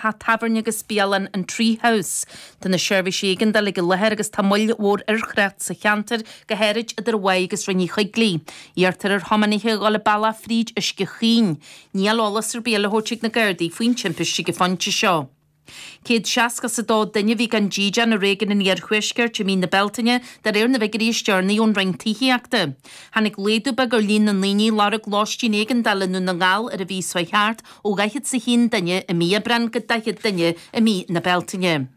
Teach tábhairne agus bialann, an Tree House, tá na seirbhísí éigeandála ag an láthair agus tá moill mhór ar thrácht sa cheantar, go háirid idir an Mhaigh agus Rinn Uí Choigligh. Iarrtar ar thiománaithe a dhul an bealach fríd Uisce Chaoin. Níl eolas ar bith le thabhairt ag na Gardaí faoin timpiste ag an phointe seo. Céad seasca is a dó duine a bhí gan dídean i réigiún an Iarthuaiscirt i mí na Bealtaine, de réir na bhfigiúirí is deireanaí ón Roinn Tithíochta. Tháinig laghdú beag ar líon na ndaoine a lorg lóistín éigeandála i nDún na nGall ar an mhí seo thart, ó dhaichead 's a haon duine i mí Aibreán go daichead duine i mí na Bealtaine.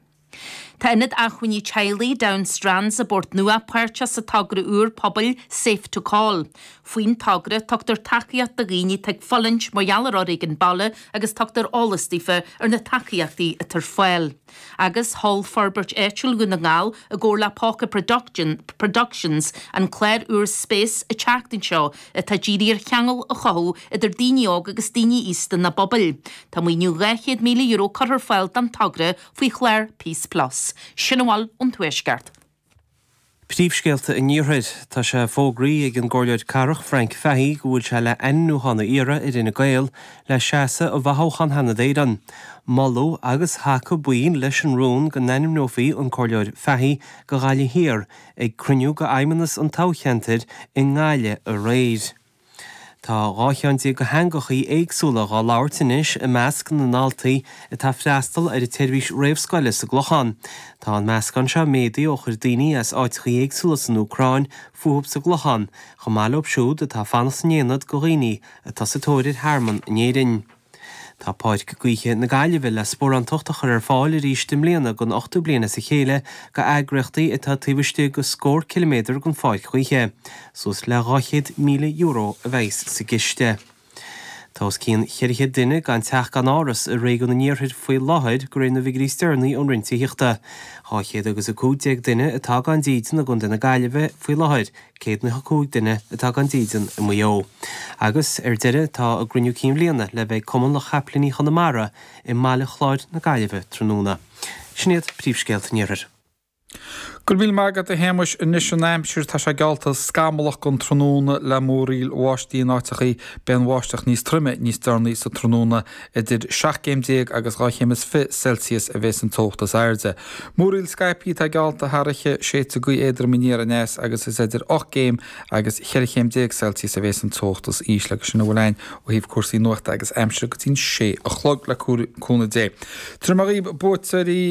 Tá Ionad Acmhainní Teaghlaigh Down Strands i bPort Nua páirteach sa togra úr pobail Safe to Call. Faoin togra, tugtar tacaíocht do dhaoine atá ag fulaingt mar gheall ar fhoréigean baile agus tugtar eolas daofa ar na tacaíochtaí atá ar fáil. agus sheol Forbairt Áitiúil Dhún na nGall i gcomhar le Póca Productions an clár úr Space an tseachtain seo atá dírithe ar cheangal a chothú idir daoine óga agus daoine aosta ina bpobail. Tá maoiniú €200,000 curtha ar fáil don togra faoi chlár Peace Plus. Sin a bhfuil ón Tuaisceart. Príomhscéalta an Iarthair. Tá sé fógraí ag an gComhairleoir Cathrach Frank Fahy go bhfuil sé le ainmniúchán a iarradh ar Fhine Gael le seasamh i bhfothoghchán Sheanad Éireann. Moladh agus thacaigh baill leis an rún go n-ainmneofaí an Comhairleoir Fahy go Ghaillimh Thiar ag cruinniú de fheidhmeannas an toghcheantair i nGaillimh aréir. Tá dhá cheann déag de theangachaí éagsúla dhá labhairt anois i measc na ndaltaí atá freastal ar an tseirbhís réamhscoile sa gClochán. Tá an meascán seo méadaí ó chuir daoine as áiteachaí éagsúla san Úcráin fúthub sa gClochán, chomh maith leob siúd atá fanacht san ionad go dhaoine atá sa tóir ar thearmann in Éirinn. Tá Páirc Gaoithe na Gaillimhe le sparántacht a chur ar fáil arís i mbliana don ochtú bliain as a chéile go eagraíochtaí atá taobh istigh de scór ciliméadar den pháirc ghaoithe. Suas le €200,000 a bhéas sa gciste. Tá os cionn cheithre chéad duine gan teach gan áras i réigiún an iarthair faoi láthair de réir na bhfigiúirí is deireanaí ón Roinn Tithíochta. Dhá chéad agus a cúig déag duine atá gan dídean i gContae na Gaillimhe faoi láthair, 105 duine atá gan dídean i Maigh Eo. Agus, ar deireadh, tá a gCruinniú Cinn Bhliana le bheith ag Cumann Lucht Chapaillíní Chonamara i mBaile Chláir na Gaillimhe tráthnóna. Sin iad príomhscéalta an Iarthair. Go raibh míle maith agat, a Shéamais. Anois an aimsir, tá sé geallta scamallach don tráthnóna le múraíl bháistí in áiteachaí. Beidh an bháisteach níos troime níos deireanaí sa tráthnóna. Idir seacht gcéim déag agus dhá chéim is fiche Celsius a bhéas an teocht is airde. Múraíl scaipthe atá geallta thar oíche, séidfidh gaoth éadrom aniar aneas agus is idir ocht gcéim agus cheithre chéim déag Celsius a bhéas an teocht is ísle agus sin a bhfuil againn ó thaobh cúrsaí nuachta agus aimsire go dtí'n sé a chlog le cúnamh Dé. Tiúrfaidh mé dhaoib buaiteoirí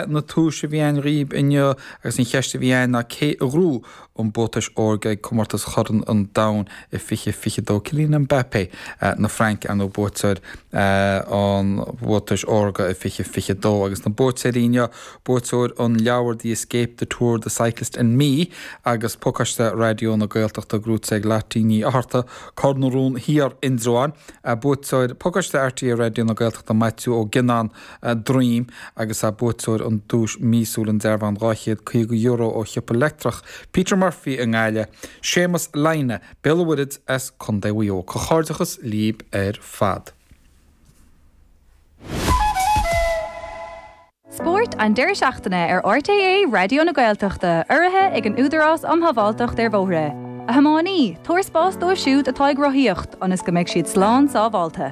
na tomhais a bhí againn dhaoib inniu agus an cheist a bhí againn ná cé a ghrú an buatais órga ag Comórtas Chorn an Domhain i 2022, Kylian Mbappé na Fraince, ar ndóigh, buaiteoir an bhuatais órga i 2022, agus na buaiteoirí inniu, buaiteoir an leabhair The Escape, The Tour, The Cyclist and Me, agus pacáiste Raidió na Gaeltachta gnóite ag Lottie Ní Fhátharta, Cor na Rón Thiar, Indreabhán, buaiteoir pacáiste RTÉ Raidió na Gaeltachta Maitiú Ó Gionnáin, Droim agus ea buaiteoir an duais mhíosúil an dearbhán €250 ó shiopa leictreach Peter Murphy i nGaillimh, Séamas Lynagh, Béal an Mhuirthead as Co. Mhaigh Eo. Comhghairdeachas líb ar fad. Spórt an deireadh seachtaine ar RTÉ Raidió na Gaeltachta, urraithe ag an Údarás um Shábháilteacht ar Bhóithre. A thiománaí, tabhair spás dóibh siúd atá ag rothaíocht ionas go mbeidh siad slán sábháilte.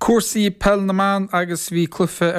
Cúrsaí Peil na mBan agus bhí cluiche ar